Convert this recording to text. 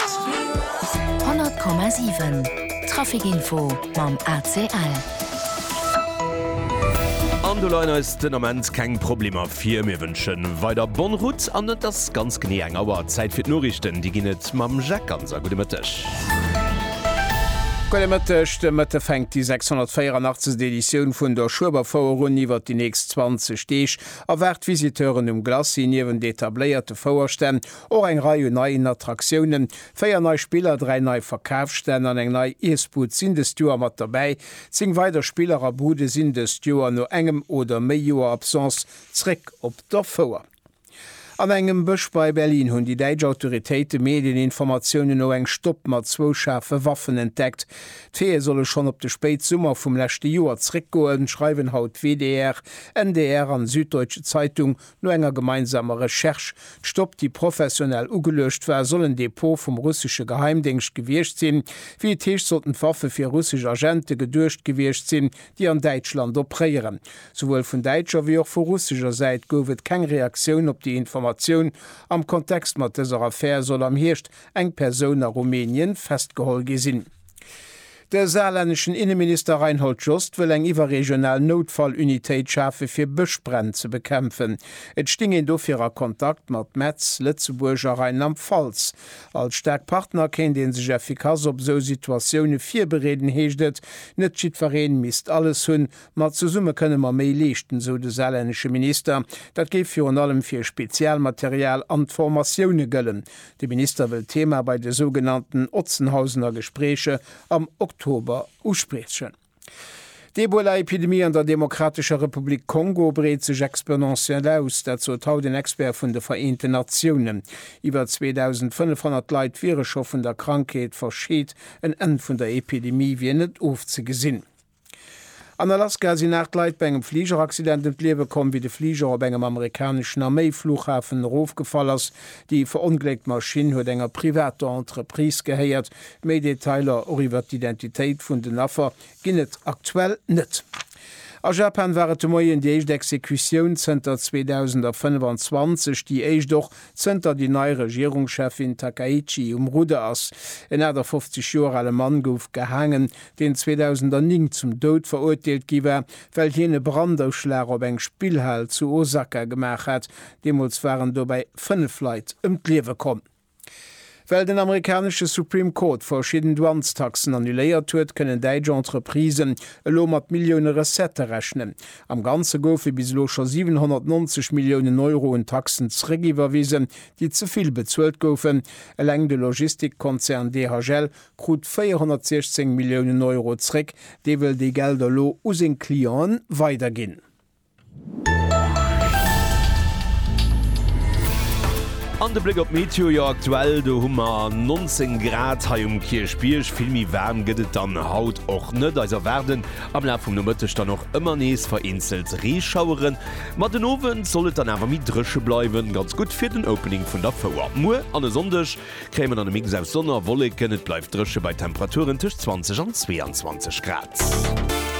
100,7 Trafic Info mam ACL. An do leien eis den Ament keng Problemer vir. Mir wënschen weider bonne route an et ass ganz genee eng Auer Zäit fir d'Noriichten. Déi ginn et mam Jacques Ganser. Gudde Mëtteg. Gudde Mëtteg. De Mëtte fänkt déi 684. Editioun vun der Schueberfouer un. Iwwert déi nächst 20 Deeg erwaart d'Visiteuren um Glacis niewent etabléierte Fouerstänn Och eng Rei un neien Attraktiounen, véier nei Spiller, dräi nei Verkafsstänn an eng nei Iessbud sinn dëst Joer mat derbäi. Zéng weider Spiller a Bude sinn dëst Joer no engem oder méi Joer Absence zréck op der Fouer. An engem Bësch bei Berlin hunn déi däitsch Autoritéite Medieninformatiounen no eng Stopp mat zwou schaarfe Waffen entdeckt. D'Veeë solle schonn op de Spéitsummer vum leschte Joer zréckgoen, schreiwen haut WDR, NDR an Süddeutsche Zeitung No enger gemeinsamer Recherche, d'Stopp, déi professionell ugeluecht war, soll en Depot vum russesche Geheimdéngscht gewiescht sinn. Wéi et heescht, sollten d'Waffe fir russesch Agente geduecht gewiescht sinn, déi an Däitschland opréieren. Souwuel vun däitscher wéi och vu russescher Säit gouf et keng Reaktioun op déi Informatioun. Am Kontext mat dëser Affär soll am Hierscht eng Persoun a Rumänien festgeholl gi sinn. De saarlänneschen Inneminister Reinhold Jost wëll eng iwwerregional Noutfallunitéit schafe fir Bëschbränn ze bekämpfen. Et sting een dofir a Kontakt mat Metz, Lëtzebuerg a Rheinland-Pfalz. Als staark Partner kéint ee sech effikass op esou Situatioune virbereeden, heescht et. Net jiddweree misst alles hunn, ma zesumme kënne mer méi leeschten, esou de saarlännesche Minister. Dat géif virun allem fir Spezialmaterial an d'Formatioune gëllen. De Minister wëll d'Thema bei de sougenannten Otzenhausener Gespréiche am Oktober uspriechen. D'Ebola-Epidemie an der Demokratescher Republik Kongo breet sech exponentiell aus. Dat sot haut en Expert vun de Vereenten Natiounen. Iwwer 2.500 Leit wiere scho vun der Krankheet verscheet. En Enn vun der Epidemie wier net ofzegesinn. An Alaska sinn 8 Leit bei engem Fligeraccident ëm d'Liewe komm, wéi de Fliger op engem amerikaneschen Arméi-Fluchhafen erofgefall ass. Déi verongléckt Maschinn huet enger privater Entreprise gehéiert. Méi Detailer, och iwwert d'Identitéit vun den Affer, ginn et aktuell net. A Japan war et de Moien déi éischt Exekutioun zënter 2025, déi éischt och Zënter déi nei Regierungscheffin Takaichi um Rudder ass. En 58 Joer ale Mann gouf gehaangen, deen 2009 zum Doud verurteelt gi war, well hien e Brandauschlag op eng Spillhal zu Osaka gemaach hat. Deemools waren dobäi fënnef Leit ëm d'Liewe komm. Well den amerikanesche Supreme Court verschidden Douanestaxen annuléiert huet, kënnen däitsch Entreprisen elo mat Millioune Recettë rechnen. Am Ganze goufe bis elo scho 790 Milliounen Euro un Taxen zeréckiwwerwisen, déi ze vill bezuelt goufen. Eleng de Logistikkonzern DHL krut 416 Milliounen Euro zeréck. Dee wëll déi Gelder elo u seng Clienten weiderginn. An de Bléck op d'Meteo, jo aktuell do hu mer 19 Grad hei um Kierchbierg. Vill méi waarm gëtt et dann haut och net. Eis erwaarden am Laf vum Nomëtteg dann och ëmmer nees vereenzelt Reeschaueren, ma den Owend soll et dann awer méi dréche bleiwen. Ganz gutt fir den Opening vun der Fouer. Muer an e Sonndeg kréie mer dann e Mix aus Sonn a Wolleken. Et bleift dréche bei Temperaturen tëscht 20 an 22 Grad.